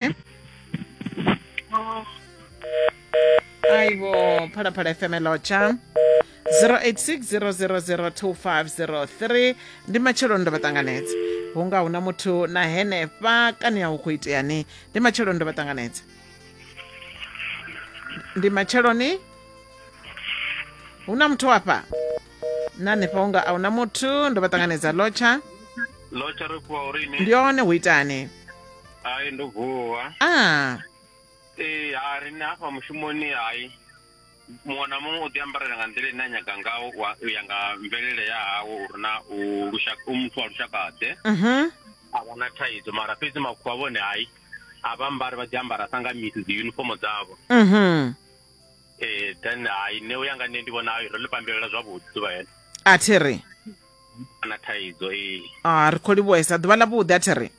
¿Eh? Ay, bo, para para FM Locha. 0860002503 ndi matshelo ndo vha ṱanganedza hu nga huna muthu na henefha kani ya u khou itea ni ndi matshelo ndo vha ṱanganedza ndi matshelo ni hu na muthu wafha na hanefha unga a huna muthu ndo vha ṱanganedza lotsha lotsha ri fhiwa uri ni ndi one hu itani hai ndo vuwa a ee ha riṋe hafha mushumoni hai muṅwe na muṅwe u ḓi ambarela nga nḓila ine a nyaga ngawo wa- u ya nga mvelele ya hawe uri na u lushaka u muthu wa lushakaḓe mhm a vha na thaidzo mara fhedzi makhuwa vhone hai a vha ambari vha ḓi ambara sa nga misi dzi unifomo dzavho mhm ee then hai nṋe u ya nga nṋe ndi vhona ro ḽi pambelela zwavhuḓi ḓuvha hene a thi ri a na thaidzo ee a ri khou livhuhesa ḓuvha ḽa vhuḓi a thi ri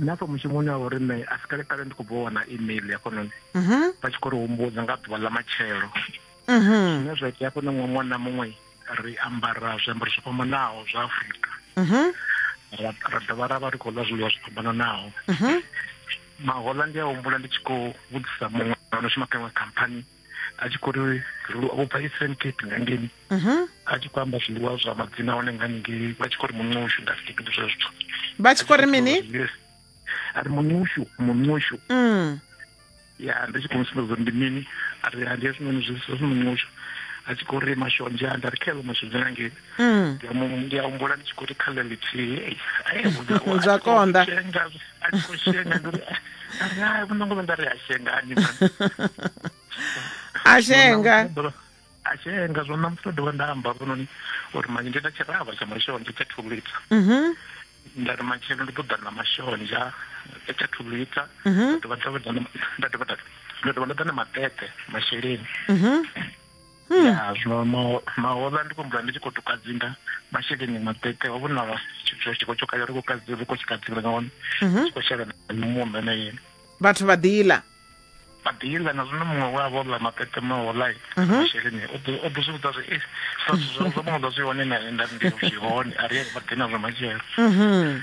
nṋe afha mushumoni wa uri nṋe a si kale kale ndi khou bva wana email ya fhanoni mhm. vha tshi khou ri humbudza nga ḓuvha ḽa matshelo mhm. zwine zwa itea fhano ṅwe ṅwana muṅwe ri ambara zwiambaro zwo fhambanaho zwa afurika mhm. ra dovha ra vha ri khou ḽa zwiḽiwa zwo fhambananaho mahoḽa ndi a humbula ndi tshi khou vhudzisa muṅwe ano shuma kha iṅwe khamphani a tshi khou ri zwiḽiwa vho bva eastern cape nga ngeni mhm. a tshi khou amba zwiḽiwa zwa madzina hone nga ningei vha tshi khou ri muṋushu nda fike ndi zwe zwithu vha tshi khou ri mini a ri muṋushu muṋushu mm. ya ndi tshi khou musumbedza uri ndi mini a ri ndi hezwinoni zwi muṋushu a tshi khou ri mashonzha nda ri kheḽo mashonzha nga ngeni Mm. ndi a mu- ndi a humbula ndi tshi khou ri kha ḽa ḽithihi ei, ai, muṋe wawe a Zwa tshi khou konḓa. shenga, a tshi khou shenga ndi ri "Ah, ari hai muṋango vha nda ri a shengani man." a shenga a shenga zwo ṋamusi ndo dovha nda amba vhononi uri manje ndi na tshiravha tsha mashonzha tsha two liter Mhm. nda ri matshelo ndi ḓo ḓa na mashonzha tsha two liter Mhm. nda dovha nda ḓa na- nda dovha nda- nda dovha nda ḓa na maṱeṱe masheleni Mhm. hmm. ya zwino mahola ndi khou mvula ndi tshi khou tukadzinga masheleni maṱeṱe ho vhona tshiko tsho kale ri khou kadzi ri khou tshi kadzinga nga hone mhm. tshi khou shela muṋo na yini vhathu vha ḓila vha ḓila na zwino muṅwe we a vho ḽa maṱeṱe mahola mhm. masheleni o ḓo zwi vhudza zwi eh, sa zwo muṅwe ḓa zwi hone na nda ndi zwi hone a ri vha ḓi na zwa matshelo mhm.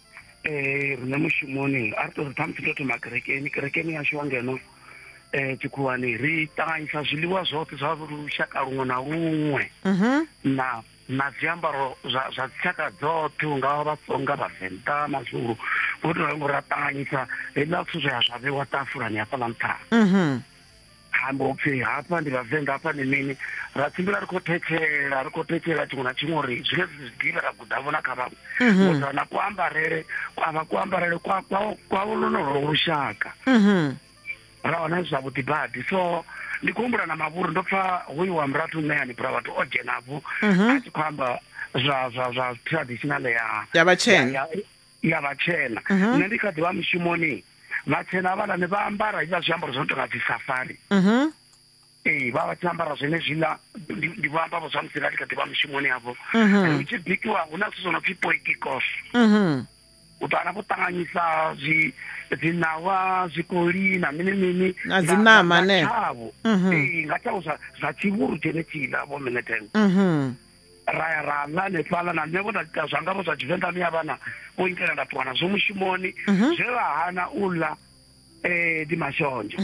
um rine mushumoni a ri to ri ṱhamusi to thoma kerekeni kerekeni yashu wa ngeno um tshikhuwani ri ṱanganyisa zwiḽiwa zwoṱhe zwa lushaka luṅwe na luṅwe mhm. na na zwiambaro zwa zwa dzitshaka dzoṱhe u nga vhatsonga vhavenḓa mazulu vho to ralo ra ṱanganyisa heiḽa zwithu zwe ya zwa vhewa tafulani hafhaḽa nṱhani mhm. hambo upfi hafha ndi vhavenḓa hafha ndi mini ra tshimbila ri khou thetshela ri khou thetshela tshiṅwe na tshiṅwe uri zwine zwiḓivha ra gudavho na kha vhaṅwe mhm. uḓa na kuambarele kwavha kuambarele kwavho lonolo lushaka mhm. ra wana zwi zwavhuḓi badi so ndi khou humbula na mavhuru ndo pfa hoyu wa murathu ṋeani bra vhathu o dzhenavho mhm. a tshi khou amba zwa zwa zwa traditional ya ya vhatshena ya vhatshena mhm. nṋe ndi kha ḓivha mushumoni vhatshena havhaḽani vha ambara hezwiḽa zwiambaro zwo no tonga dzi safari mhm. ee vha vha tshi ambara zwene zwiḽa ndi vho amba vho zwa musi nga ndi kha ḓivha mushumoni havho mhm. hu tshi bikiwa hu na zwithu zwo no pfhi poikikos u ḓo wana vho ṱanganyisa zwi dziṋawa zwikoli na mini mini na dzi ṋama ne tshavho ee nga tshavho zwa tshivhuru tshene tshiḽa vho mine ten ra ya ra ḽa hanefhaḽa na nṋe vho nda ita zwanga vho zwa tshivenḓa miya vhana vho itela nda ṱuwa nazwo mushumoni mhm. zwe vha hana u ḽa um ndi mashonzha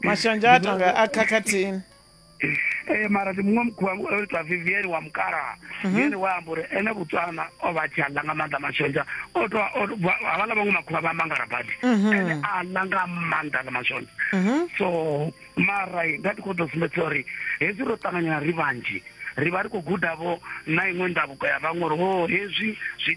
mashonzha a tonga a khakhathini eh mara ndi muṅwe mukhuwa o ita vivian wa mukalaha mhm. vivian wa amba uri ene botswana o vha tshi aḽa nga maanḓa mashonzha o to havhala vhaṅwe makhuwa vha mangara badi mhm. ene a ḽa nga maanḓa ḽa mashonzha mhm. so mara nda ndi khou ḓo sumbedza uri hezwi ro ṱanganyana ri vhanzhi ri vha ri khou gudavho na iṅwe ndavhuko ya vhaṅwe uri ho hezwi zwi